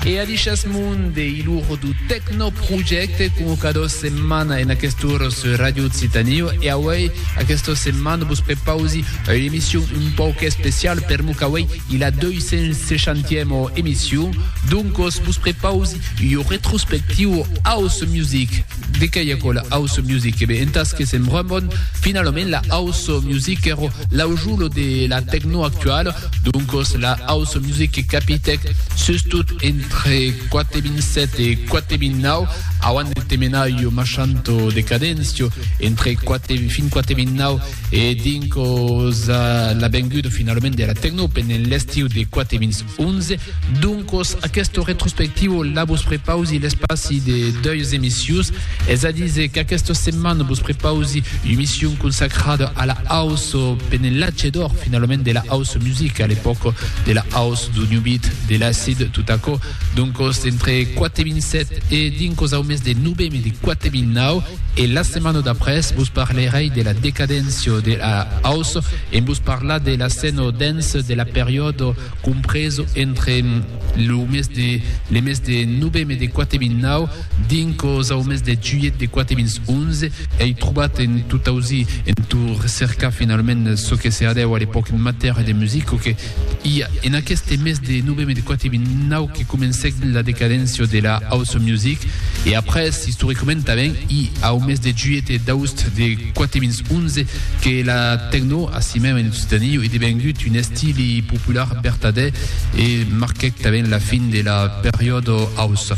E a dishas mon de hilor du Tecno Projecte como cada setmana en aquest ora sur Radio Occitanie e auei aquesta setmana vos prepausi una emission un pauc especial per mo qu'auei i la 260ema emission doncos vos prepausi ua retrospectiu House Music De qué ei aquò la house music? E ben, entàs que sèm brun bon, finalament la house music ero l'aujulo de la tecno actuala, doncos la house music que capitèc sustot entre 4.7 e 4.9, auant de Temenayo, Machanto, Decadencio, entre 4 fin 4.9 e dincos la venguda finalament de la tecno pendent l'estiu de 4.8. 11, doncos, aquesto retrospectivo la vos prepausi l'espaci de deuis emissius, es a diser qu'aquesta setmana vos prepausi u'emission consacrada a la house penelatge d'or finalament de la house music a l'epòca de la house do new beat de l'acid tot aquò doncos entre 4.7 e dincos au mes de noveme de 4.9 e la setmana d'après vos parlerei de la decadéncia de la house En vos parlar de l'asceno dens de la periòdo compreso entre lo mes de le mes de noveme de 4009 dincos au mes de juilhet de 4011 ei trobat en tot ausir en tot recercar finalament çò que se hadèu a l'epòca en matèria de musica que I a en aqueste mes de novembre de 4.029 que comencèc la decadéncia de la house music e après istoricament tanben i au mes de juilhet e d'aoust de 4.011 que la techno asimèu en Occitanie ei devengut un estili popular vertadèr e marquèc tanben la fin de la periòda house.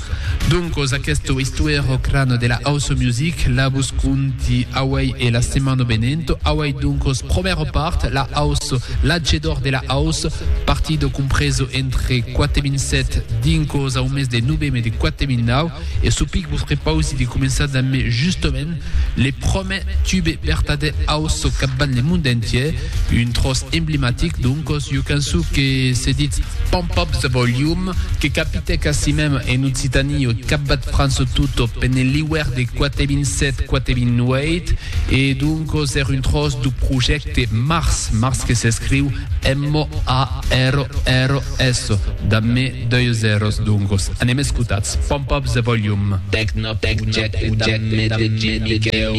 Doncos aqueste istoèro cran de la house music la vos conti auèi e la setmana venenta. Doncos, promèra part, la aus, l'atgedor de la aus, partido compreso entre 4007 dincos au mes de noveme de 4009, e çò pic vos prepausi de començar dambe justament le promèr tube vertadèr aus capbant le monde entier, un tròç emblematic, doncos, jo canço que se ditz Pump Up The Volume, que capitèc asimèm en Occitanie o capbat França tota pene l'iuèrn de 4007-4008, E doncos er un tròç du projècte Mars, Mars que s'escriu M-A-R-R-S, damb me deu zèros, doncos anem escotats, pòmp up the volume. Tecnoprojècte damb me DJ Miquèu.